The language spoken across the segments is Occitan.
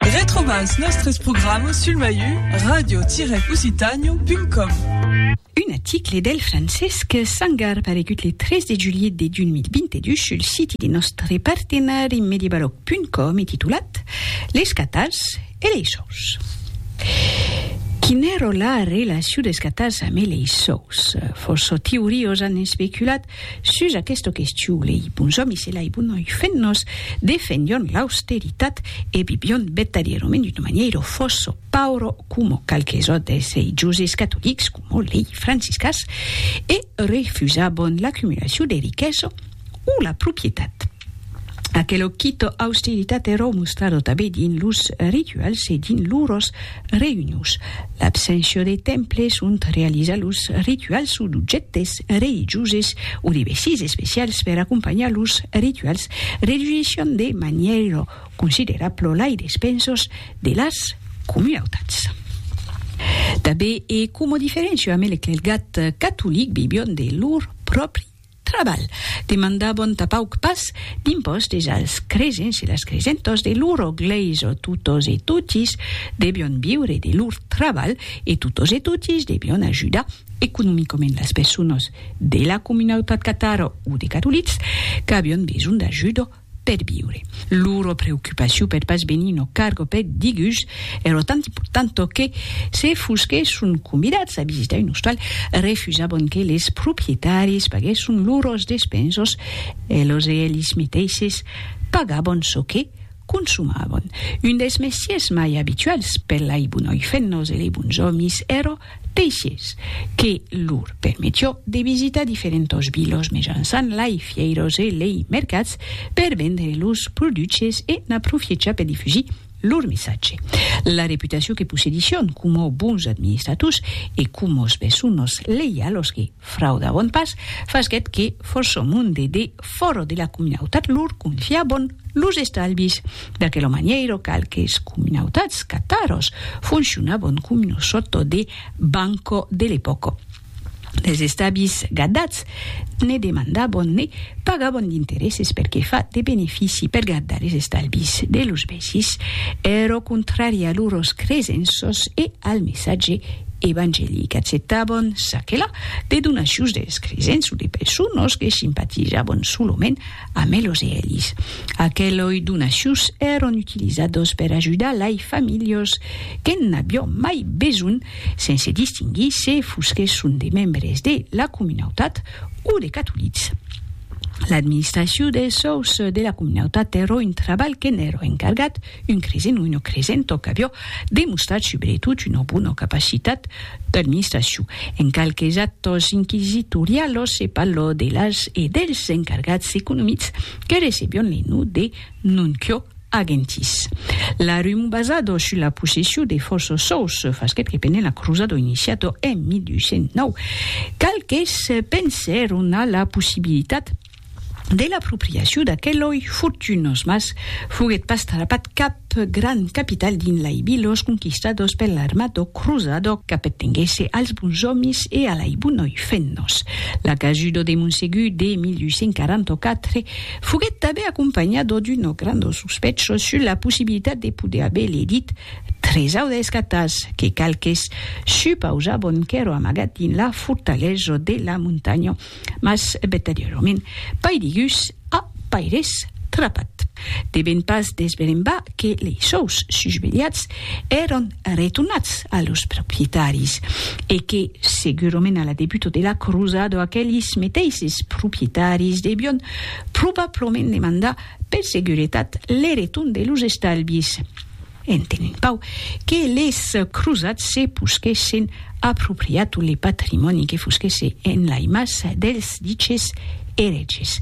Retrobas nòstres programas sul maiu radio-occitània.com. Un aticle del Francesc Sangar paregut le 3 de julhet de 2022 sul siti de nòstre partenari mediebaloc.com e titulat Les catars e lei sòus. Quin'èro la relacion des catars amé lei sòus? Fòrça teoriós an especulat Sus aquesta question, lei bons òmis e lei bonoi fennos defendion l'austeritat e vivion vertadierament d'una manièra fòssa paura coma qualques autres religioses catolics coma lei franciscans e refusabon l'acumulacion de riquesa o la proprietat. Aquelo quito austeritat ero mostrado tabé dins los rituals e dins lors reünions. L'abséncia de temples ont realizar los rituals o d'objèctes religioses o de vestits especials per acompanhar los rituals reduissián de manièra considerabla lai despensos de las comunautats. Tabé e coma diferéncia amé l'eclelgat catolic vivión de lor pròpri Trabalh, demandabon tà pauc pas d'impòstes als cresents e las cresentòs de loro glèisa, totos e totis debion viure de lor trabalh e totos e totis debion ajudar economicament las personas de la comunautat catara o de catolics qu'avion besonh d'ajuda. per viure. Loro preocupacion peth pas venir no cargo peth digús ero tant important tò que, se fusque son convidats a visitar un ostal, refusabon que les propietaris paguèsson loros despensos e los e elis meteisses pagabon çò que consumabon. Un des mestiers mai abituals per lei bonoi fennos e lei bons òmis ero Teixes, que lor permetió de visitar diferentos vilos mejançant lai fièiros e lei mercats per vendre los produches e n'aprofiechar per difusir lor messatge. La reputacion que possedissión coma bons administrators e coma os besonos leialos que. Frauda bon pas, fasquèt que Fòrçò Monde de Fòro de la Cominautat lor confià bon los estalvis. D'aquela manièira qualques cominautats Qataros fonciona bon comino sòrto de Banco de l'epòca. Dels estabis gardats ne demandà bon ne pagà bon d'interesses per que fa de benefici per gardar es estalvis de los vèsis. Ero contrari a luròs cresenços e al messatge evangelic acceptabon çaquela de donacions des cresents o de personas que simpatizabon solament amb elos e elis. Aqueloi donacions èron utilizados per ajudar lai familhas que'n avion mai besonh sense distinguir se fosquesson de membres de la comunautat o de catolics. L'administracion des sòus de la comunautat èra un trabalh que'n èra encargat Un cresen o una cresenta qu'avió demostrat subretot una bona capacitat d'administracion. En qualques actas inquisitorialas se parla de las e dels encargats economics que recebián le nom de nuncio agentis. La rumor basada sus la possession de fòrça sòus fasquèt que pendent la crosada iniciada en 1209, qualques pensèron a la possibilitat, de l'apropriacion d'aqueloi fortunós mas foguèt pas trapat cap grand capital dins lai vilos conquistados per l'armado cruzado qu'apertenguèsse als bons òmis e a lai bonoi fennos. La casudo de Monsegur de 1844 foguèt tanben acompanhado d'unos grandos sospechos sus la possibilitat de poder aver ledit tres audes catas que qualques supausabon qu'èron amagat dins la fortalesa de la montanha mas vertadièrament paidigus a paires trapat. Devèn pas desbrembar que lei sòus susvelhats èran retornats a los proprietaris e que, segurament a la debuta de la crusada, aquelis meteisses proprietaris devion probablament demandar per seguretat le retorn de los estalvis. Entenent pau que les crosats se posquessen apropriat le patrimòni que fosquèsse en lai mas dels diches erètges,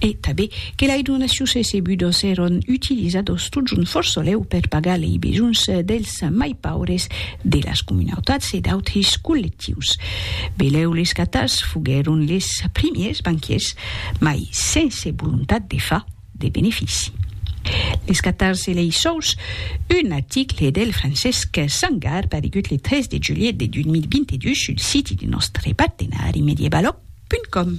e tabé que lai donacions recebudos èron utilizados totjorn forsolèu per pagar lei besonhs dels mai paures de las comunautats e d'autres collectius. Belèu les catars foguèron les primiers banquiers, mai sense volontat de far. de benefici. Les 14 e lei sòus, un article del Francesc Sangar paregut le 3 de julhet de 2022 sul siti de nòstre partenari mediebalog.com.